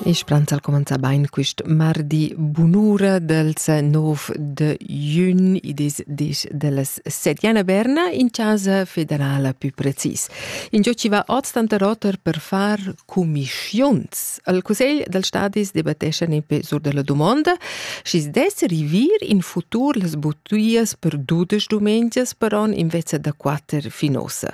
E Spranza ha cumenzà bain quist mardi bunura dals 9 de jun, i dis dis dellas Settiana Berna, in chasa federala pü precis. Ingio chi va hoz tanta roter per far cumischiuns. Al Cussegl dals stadis debattessan epe sur della dumonda, schi's dess rivir in futur las buttuias per dudesch dumengias per on invezza da quatter fin ossa.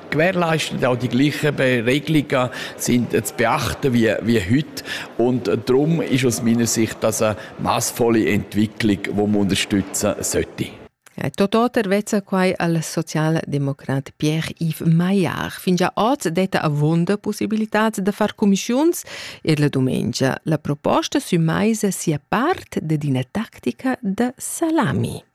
gewährleisten. Auch die gleichen Regelungen sind zu beachten wie, wie heute. Und darum ist aus meiner Sicht das eine maßvolle Entwicklung, die man unterstützen sollte. Tototer vezza quai al socialdemocrat Pierre-Yves Maillard. Fingia oz detta avonda possibilitats da far commissiuns er la domenica. La proposta sü maisa sia part dad ina tactica da salami.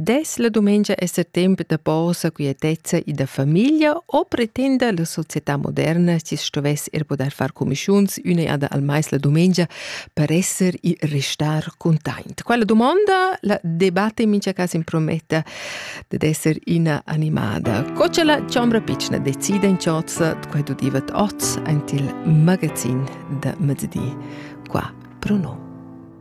Dess la dumengia esser temp da posa quietezza e da famiglia o pretenda la società moderna chi stovess er poder far comischiuns üna jada al mais la dumengia per esser e restar containt? Quella domanda la debatte in mincha cas imprometta dad esser üna animada. Co cha la chombra pitschna decida in chozza quai udivat oz ant il magazin da mezzdi qua pro no.